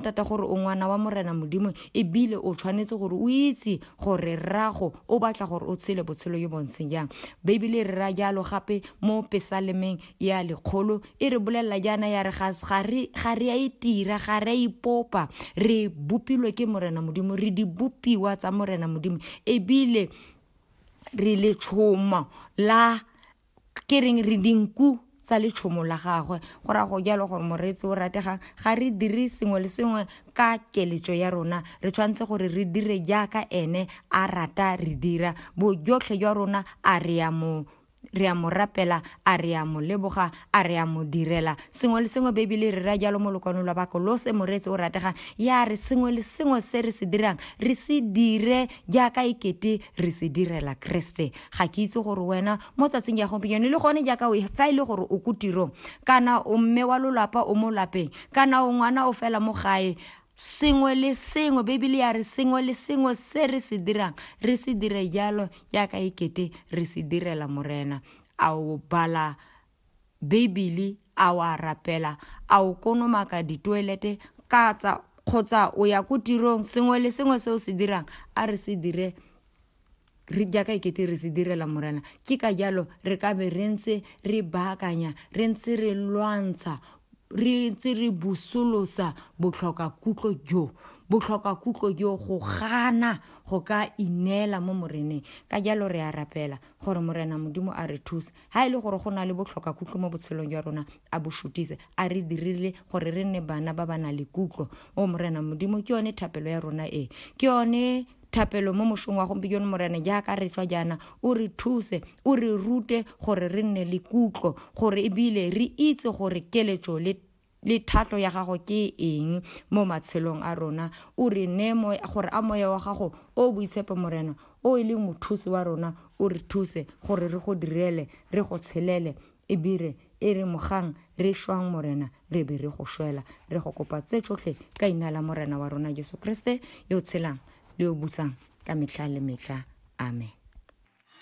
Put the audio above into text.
thata gore o ngwana wa morena modimo ebile o tshwanetse gore o itse gore rrago o batla gore o tshele botshelo yo bontsheng jang beibele e re ra jalo gape mo pesalemeng ya lekgolo e re bolelela jaana ya re ga re a itira e ga re a ipopa re bopilwe ke morena modimo re di bopiwa tsa morena modimo ebile re letshomo la ke reng re dinku tsa letshomo la gagwe go ra go jalo gore moreetsi o rategang ga re dire sengwe le sengwe ka keletso ya rona re tshwanetse gore re dire jaaka ene a rata re dira bojotlhe jwa rona a re ya mo re a mo rapela a re a mo leboga a re a mo direla sengwe le sengwe bebele re ra jalo mo lokwano lwa bakolose moreetsi o rategang ya re sengwe le sengwe se re se dirang re se dire jaaka e kete re se direla keresete ga ke itse gore wena mo tsatsing ya gompieno le gone jaaka o fa e le gore o ko tirong kana o mme wa lolapa o mo lapeng kana o ngwana o fela mo gae sengwe le sengwe bibele ya re sengwe le sengwe se re se dirang re se dire jalo jaaka e kete re se direla morena a o bala Beibele, a o a rapela, a o konomaka ditoelete katsa kgotsa o ya ko tirong sengwe le sengwe se o se dirang a re se dire re jaaka e kete re se direla morena ke ka jalo re ka be re ntse re baakanya re ntse re lwantsha re ntse re busolosa botlhoka kutlo jo botlhoka kutlo jo go gana go ka ineela mo moreneng ka jalo re a rapela gore morena modimo a re thuse Ha e le gore go na le botlhoka kutlo mo botshelong jwa rona, a bo shutise, a re dirile gore re nne bana ba ba nang le kutlo. O Morena Modimo, ke yone thapelo ya rona e. Ke yone thapelo mo moshong wa gompieno morena jaaka re tswa jaana o re thuse o re rute gore re nne le kutlo gore ebile re itse gore keletso le le thatlo ya gago ke eng mo matshelong a rona o re ne gore a moya wa gago o boitshepo morena o e leng mothusi wa rona o re thuse gore re go direle re go tshelele ebire e re mogang re šwang morena re be re go šwela re go kopa tse tsotlhe ka ina la morena wa rona jesu kriste yo tshelang le yo busang ka metlha le metlha amen